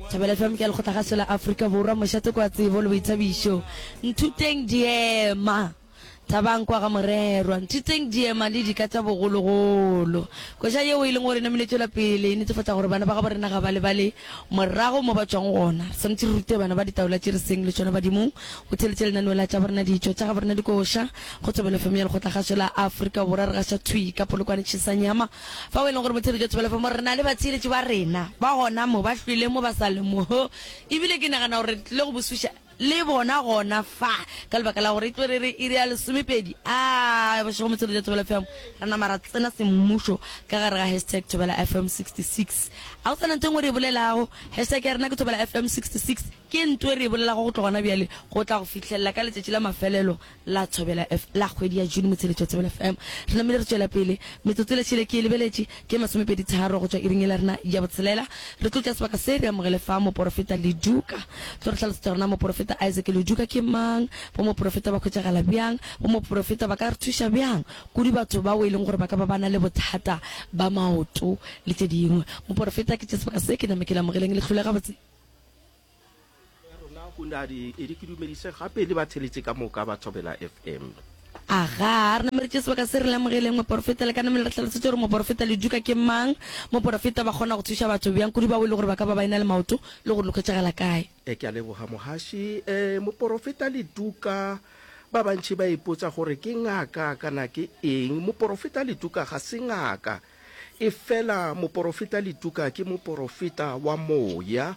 Thabela FM ke ya lekgotla gaso la Afrika Borwa mošate kwa tsebo le boithabišo nthuteng diema thabang kwa ga morerwa nthuteng diema le dika tša bogologolo koša yeo e leng gore namile tšwela pele e netefatša gore bana ba gabo rena ga ba lebale morago mo ba tšwang gona re swanetše re rute bana ba ditaola tše re seng le tšona badimong go theletše lenaneo la tša borena ditšo tša gabo rena dikoša go Thabela FM ya lekgotla gaso la Afrika Borwa re gaša thwi ka polokwane tšhesanyama Fao e lego gore Motheo Jwa Tshepelofo mo re na le batheeletši ba rena ba gona mo, ba hwileng mo, ba sa le mo, e bile ke nagana gore re tlile go bosuša le bona gona fa, ka lebaka la gore e tlo re re iri ya lesomepedi. A, bošego Motheo Jwa Thobela FM, ra nama ra tsena semmušo ka gare ga hashtag Thobela FM 66. A go sa na ntho e nngwe re e bolelago, hashtag ya rena ke Thobela FM 66, ke ntho e re e bolelago go tloga gona bjale go tla go fihlelela ka letšatši la mafelelo. la Thobela F la kgwedi ya June motsheletšo wa Thobela FM. Re namile re tšwela pele. Metsotso e le šele ke e lebeletše, ke masomepedi tharo go tšwa iring yela rena ya botshelela. Re tlo tšea sebaka se re amogele fa Moporofeta Leduka. Tlo re hlalosetša gore na Moporofeta Isaac Leduka ke mang, bo Moporofeta ba hwetšagala bjang, bo Moporofeta ba ka re thuša bjang kudu batho bao e leng gore ba ka ba ba na le bothata ba maoto le tše dingwe. Moporofeta ke tše sebaka se ke name ke le amogeleng le hlole gabotse. rona go ne a di edi ke dumedise gape le ba tsheletse ka moka ba thobela fm aga re nameretše sebaka se re lemogeleng moporofeta le ka namele re tlhalosetše gore moporofeta le duka ke mang moporofeta ba kgona go thuša batho bjang kudu bao e le gore ba ka ba ba ena le maoto le gore lokhwetšagela kae e ke a leboga mogaši um eh, moporofeta le duka ba bantši ba ipotsa gore ke ngaka kana ke eng moporofeta le duka ga se ngaka Efela moporofeta Lutuka ke moporofeta wa moya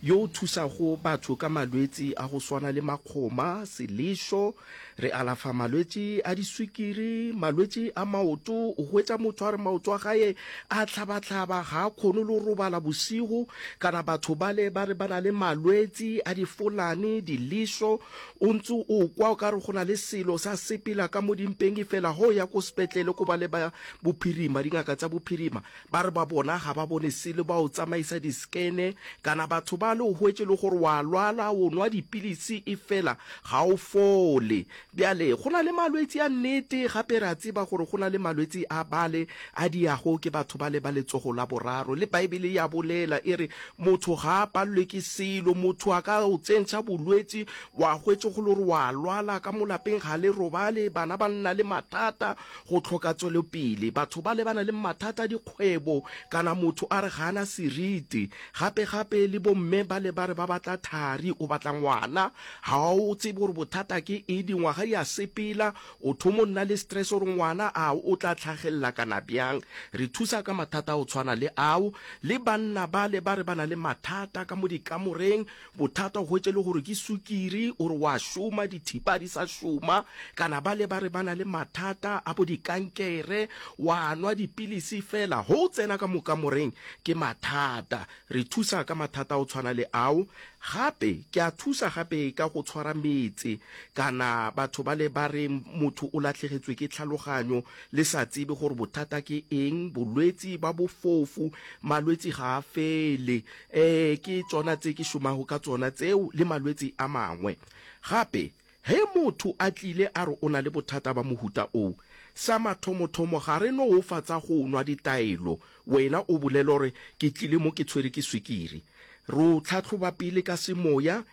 yo o thusago batho ka malwetsi a go swana le makgoma, selešo, re alafa malwetši a diswikiri, malwetši a maoto, o hwetša motho a re maoto a gae a hlaba-hlaba, ga a kgone le go robala bošego, kana batho bale ba re ba na le malwetsi a difolane, dilešo, o ntse o kwa o ka re go na le selo sa sepela ka mo dimpeng efela ga o ya ko sepetlele ko bale ba Bophirima, Dingaka tša bophirima ba re ba bona ga ba bone selo, ba o tsamaisa diskene. Kana batho bale o hwetše e le gore o a lwala, o nwa dipilisi efela ga o fole. Bjale go na le malwetsi a nnete, gape re a tseba gore go na le malwetsi a bale a diyago ke batho bale ba letsogo la boraro. Le Baebele e a bolela e re, Motho ga a palelwe ke selo. Motho a ka o tsentšha bolwetsi, wa hwetše go le gore o a lwala, ka mo lapeng ga le robale, bana ba nna le matata, go hloka tswelopele, batho ba lebana le mathata a dikgwebo kana motho a re ga a na seriti. Gape-gape le bomme ba le ba re ba batla thari, o batla ngwana, ga o tsebe gore bothata ke eng, dingwaga di a sepela, o thomo nna le stress gore ngwana a o tla tlhagelela kana bjang. Re thusa ka mathata a go tshwana le ao. Le banna ba le ba re ba na le mathata ka mo dikamoreng, Bothata o hwetše le gore ke sukiri, o re wa šoma, dithipa ga di sa šoma, kana bale ba re ba na le mathata a bo dikankere, wa nwa dipilisi fela, ge o tsena ka mokamoreng ke mathata. Re thusa ka mathata a go tshwana le ao. Gape ke a thusa gape ka go tshwara metse, kana batho bale ba re motho o lahlegetswe ke tlhaloganyo, le sa tsebe gore bothata ke eng, bolwetsi ba bofofu, malwetsi ga a fele. Ee, ke tšona tse ke šomago ka tsona tseo le malwetse a mangwe. Gape, ge motho a tlile a re o na le bothata ba mohuta oo, sa mathomothomo ga re no o fa tsa go nwa ditaelo wena o bolele gore ke tlile mo ke tshwere ke swikiri. Re o tlhahloba pele ka semoya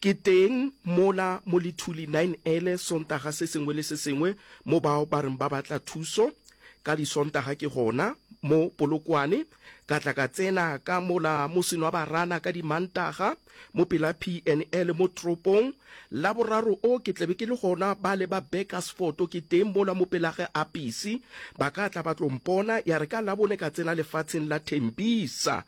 Ke teng mola mo Lithuli nine ele Sontaga se sengwe le se sengwe mo bao ba reng ba batla thuso. Ka Disontaga ke gona mo Polokwane, ka tla ka tsena ka mola mo Senwabarana ka Dimantaga, mo pela PNL mo toropong. Laboraro o ke tlabe ke le gona bale ba Burkersfort ke teng mola mo pela ge Apisi, ba ka tla ba tlo mpona. Ya re ka Labone ka tsena lefatsheng la Tembisa.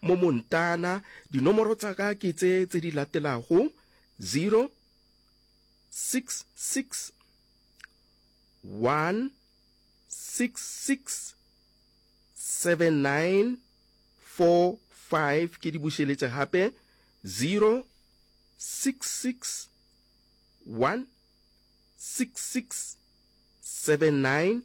Mo Montana, dinomoro tsa ka ke tse tse di latelago, 0 six six one six six seven nine four five ke di bušeletše gape zero six six one six six seven nine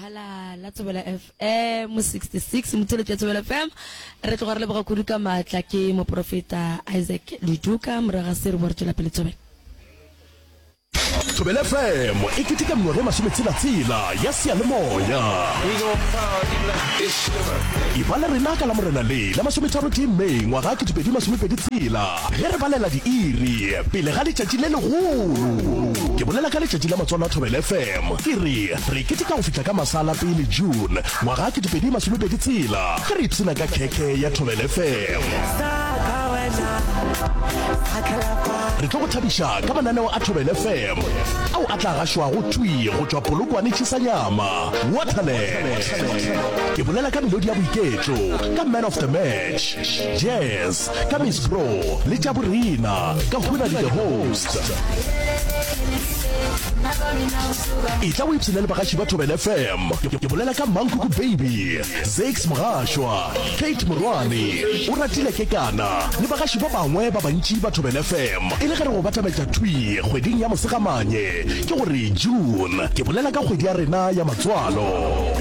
hala la tsebela fm 66 motseletso ya tsebela fm re tloga re leboga kudu ka maatla ke moprofeta isaac leduka moraga se re bo re tswela pele tsobela thobele fm e keteka mengwaga ye masometshelatsela ya seyalemoya e ba le rena ka la morena le la masometharotee may ngwaga ketepedi masomepedi tshela ge re balela diiri pele ga letšatši le legolo ke bolela ka letšatši la matswalo a thobele fm ke re Re keteka go fihla ka masala pele June ngwaga ke 2020 tshela ge re ipshina ka khekhe ya Thobel FM. Re tlo go thabiša ka mananeo a Thobel FM ao a tla gašwago thwi go tšwa Polokwane Chisanyama, Waterland. Ke bolela ka melodi ya boiketlo, ka man of the match, jazz, Ka Miss Bro le tša borena ka hona le the host. E tla o ipshina le bagaši ba Thobela FM. Ke bolela ka Mankuku Baby, Zex Mogashwa, Kate Morwane, o ratile kekana le bagaši ba bangwe ba bantši ba Thobela FM. E le ge re go batametša thwi kgweding ya Mosegamanye, ke go re June, ke bolela ka kgwedi ya rena ya matswalo.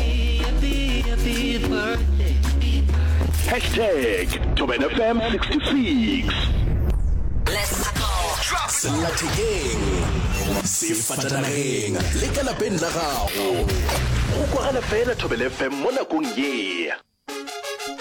Tag, Thobela FM 66. Sellathekeng, sefatanageng le ka lapeng la gago. Go kwagala fela Thobela FM mo nakong ye.